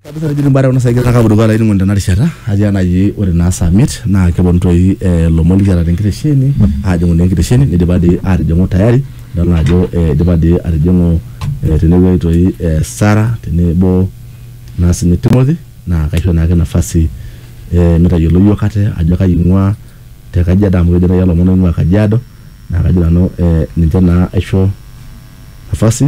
kabisa nejoki mbare kuna saai kaka apuruko olainining'oni tena rishata atii enaji ore naa saa miet naa keponu toi eh, ilomon likiata tenkitesheni aajing'u naa enkitesheni nidipa dii atijing'u tayari idol naa ajo eh, idipa dii atijing'u eh, tenewueji toi eh, Sara tenebo naa sinye Timothy naa kaisho naake nafasi eh, mitayiolo iyiok ate ajo kai ing'ua te Kajiado amu kejo taayie ilomon oing'ua Kajiado naa kajo nanu eh, ninche naa aisho nafasi.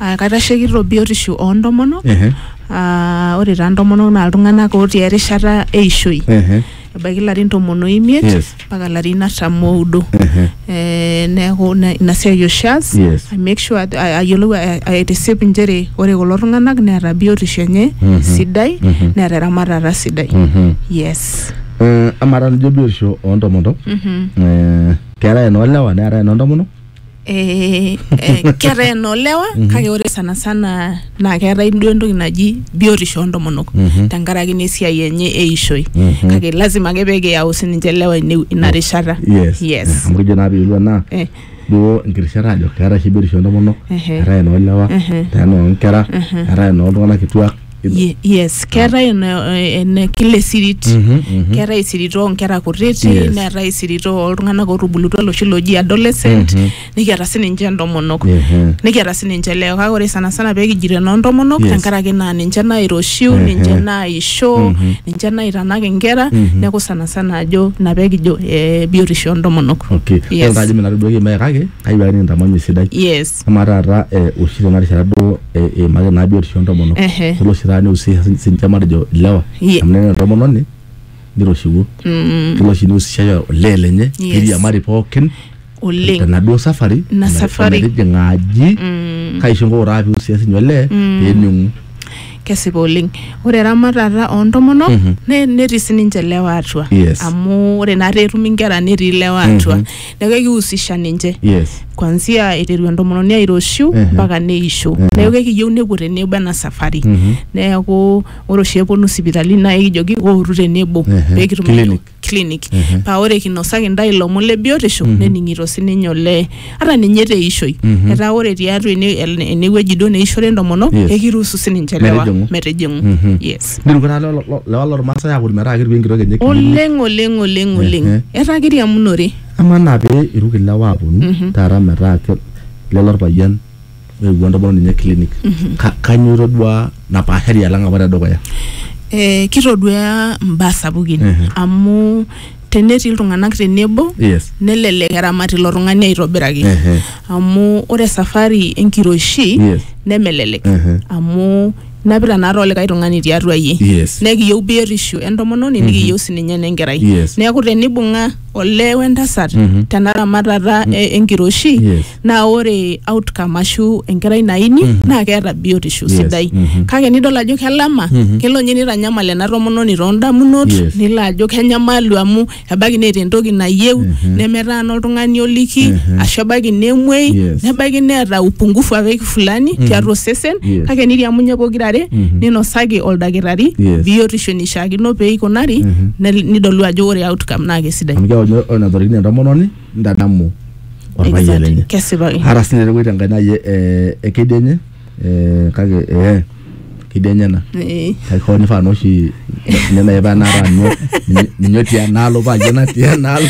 Aa kaitashekito biotisho oo ntomonok Ehe. aa ore taa ntomonok naa iltung'anak ootii erishata eishoi Ehe. ebaiki ilarin tomon oimiet Yes. mpaka ilarin artam oudo Ehe. Eh, neeku ina ina siai oshi aas Yes. I make sure ajo- a- ayiolou a- a- aitisip inchere ore kulo tung'anak neeta biotisho enye Mhm. sidai Mhm. neeta eramatata sidai Mhm. yes Eh, amaa taa nijo biotisho oo ntomonok Mhm. eh, keetae enoolewa neetae enoo ntomonok eh, eh, keeta enolewa Mhm. kake ore sana sana naa keetae duo entoki naji biotisho oontomonok Mhm. tenkaraki naa esiai enye eishoi Mhm. kake lazima ake pee kiyau sininche lewa ine- ina rishata yes yes amu kijo naa piilo naa Eh, duo enkirishat ajo keetae oshi biotisho entomonok ehe, eetae enoolewa ehe, eetae enoonkera eetae enooltung'anak kituak Ye- yes keetae ena- ene kila esirit keetae isirit oonkera kutiti Yes. neetae isirit oltung'anak otubulutua loshi loji adolescent nikiata sininche entomonok Mhm. nikiata sininche leo kake ore sanasana peekijito enoontomonok Yes. tenkaraki naa ninche nairoshiu ninche naisho ninche naitanak inkera neeku sanasana ajo ina peekijo eh, biotisho oontomonok okay Yes. Ore taata ajo minatoduaki embae kake kayieu ake nikintamanye esidai yes Amaa taata oshi tena rishata duo eimaki naa biotisho oontomonok kelo oshi taata neihusisha siininche matejo ilewa amu tenaa entomononi niroshiwuo kelo oshi neihusishai olee lenye neiriamari pookin tenaduo safari ometijing'a aji kake aisho inkuuk taa peihusisha siininye olee peening'u. Kesipa oleng. Ore eramatata oontomonok netii siininche ilewa atua amu ore naa peetumi inkera netii ilewa atua neeku ekihusisha ninche yes kwanzia eiteru entomononi airoshiu Ehe. mpaka neisho Ehe. neeku ekiyieu nepuo tenebo ena safari Mhm. neeku ore oshi eponu sipitali naa ekijoki ootu tenebo Ehe. pee kitum Clinic. clinic Ehe. paa ore kinosaki intae ilomon le biotisho Mhm. nening'ito sininye olee ata ninye te ishoi Mhm. etaa ore tiatua ene- ene- enewueji duo neishore entomonok Yes. ekiruhusu sininche lewa Metijing'u. metijing'u Mhm. yes Nelo kata lelo lo- lewa lormaasai aakut metaa ketiu enkitok enye kinyi. oleng oleng oleng oleng Ehe. etaa kiriamunore Amaa naa pee iruk ilewa aaponu taata metaa ke- lelo orpayian oewuo entomononi enye clinic. Ka- Kanyoo itoduaa napaashari alang apa tedukuya? eh, kitoduaa imbaa sapukin Ehe. amu tenetii iltung'anak tenebo Yes. nelelek eramat ilo tung'ani aitobiraki Ehe. amu ore safari enkiroshi Yes. nemelelek Ehe. amu napita naa too likae tung'ani tiatua iyie Yes. nekiyieu biotisho entomononi nikiyieu sininye enenkerai Yes. neeku tenibung'a olee wentasat Mhm. tena ramatata e- enkiroshi Yes. naa ore outcome ashu enkerai naini naa keeta biotisho Yes. sidai Mhm. kake nidol ajo kelama Mhm. kelo ninye nitanyamal ena tomononi too ndamunot Yes. nilo ajo kenyamalu amu ebaiki neeta entoki nayieu nemetaana oltung'ani oliki ashu ebaiki nemuei Yes. nebaiki neeta upungufu ake fulani tiatua osesen Yes. kake niriamunye pokirare ninosaki oldakitari Yes. biotisho nishaakino pee ikunari nel- nidolu ajo ore outcome naa kesidai amu keaku ninye ore natorikine entomononi nitadamu orpayian Exactly. lenye kesipaki hara sinye epuoi tenkai nai eh, ekedienye eh, kake eh, ketii enyena Eh. kake hoo nifaa naa oshi ninye nai paa naata anu ninye- ninye otii enaalo paa ajo natii enaalo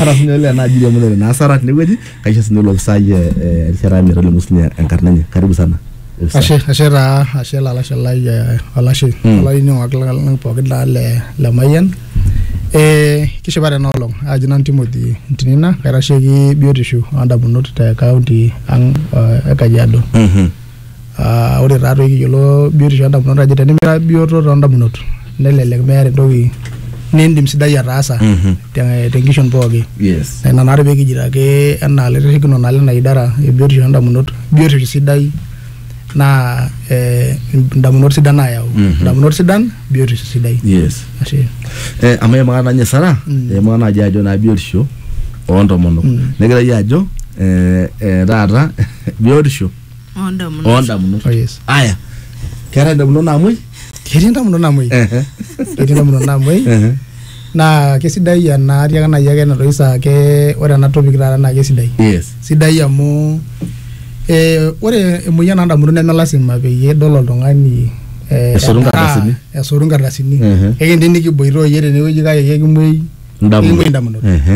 ata sinye ole enaaji iriamunore naa asara tinewueji kaisho sinye olopisai eh, eh, erishata metolimu sinye enkarna enye karibu sana Ofisa. ashe ashe taa ashe lalashe lai eh, olashe Mm. olainining'ok lang pookin taa le le mayian Eh, kishipa tena olong aji nanu Timothy Ntinina kaitasheki biotisho ondamunot te kaunti ang uh, e Kajiado Mhm. uh, ore taatoi kiyiolo biotisho ondamunot ajo tenimira bioto tondamunot nelelek meeta entoki nindim sidai ataasa Mhm. te- tenkishon pooki Yes. Na ina naare pee kijito ake enaa laitashekinok naa lena idara e biotisho ondamunot biotisho sidai naa eh, indamunot sidan naayau Mhm. indamunot sidan biotisho sidai yes ashe eh, amu emakata nanye sara mm. emakata naji ajo naa biotisho oontomonok mm. negira yie ajo eh, eh, taata biotisho oondamunot oondamunot oh yes aya keetae indamunot naamuoi ketii indamunot namuoi ehe ketii indamunot namuoi ehe naa kesidai ena atiaka nai ake enatoki saa ke ore ena topic taata naa kesidai yes sidai amu eh, ore emoyian oondamunot neme lasima peyie idol oltung'ani eh, Esotu edaa, nkardasini. esotu nkardasini Mhm. ekindim nikiboitooyie tenewueji kake kekimuei Indamunot. kekimuei indamunot Ehe.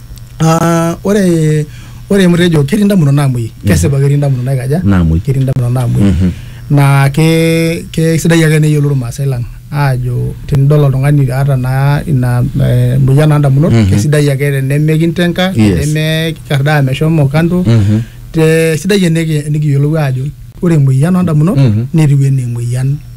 Ah, ore ore mtejo ketii ndamunot naamuei kesipa ketii ndamunot naikaja Naamuei. ketii ndamunot naamuei Mhm. naa ke kesidai ake neyiolou irmaasai lang aajo tenidol oltung'ani aata naa ina eh, moyian oo ndamunot Mhm. kesidai ake tenemikinteng'a Yes. tenemikardaa meshomo kando Mhm. te sidai eniki- enikiyiolou aajo ore emoyian oo ndamunot Mhm. netiu enaa emoyian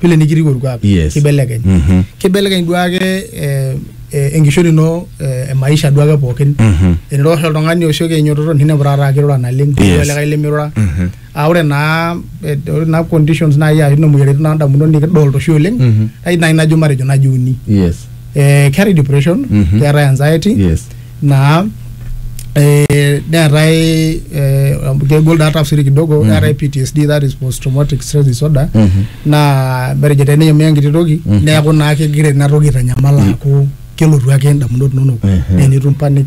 vile nikitiu orkuak Yes. kibelekeny Mhm. kibelekeny duake eh, eh, enkishori ino eh, emaisha duake pookin Mhm. eniro oshi oltung'ani osioki ainyototo ninepu taata akirura naleng Yes. yes. likae lemirura Mhm. aa ore naa eh, ore naa conditions naaji ashu ina moyiaritin naa ndamunot nikidolta oshi oleng Mhm. ai nai najo matejo naji uni yes eh, keetae depression Mhm. keetae anxiety yes naa eh, neetae eh, kegol daa tafsiri kidogo Mhm. neetae ptsd that is post traumatic stress disorder Mhm. naa matejo teneyamia enkiti toki Mhm. neeku naa kegira ina toki aitanyamal aaku kelotu ake indamunot inonok Mhm. na enitum panic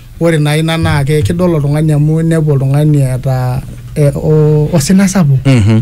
Ore naa ina naa kidol oltung'ani amu inepu oltung'ani eeta eh, osina sapuk mm. -hmm.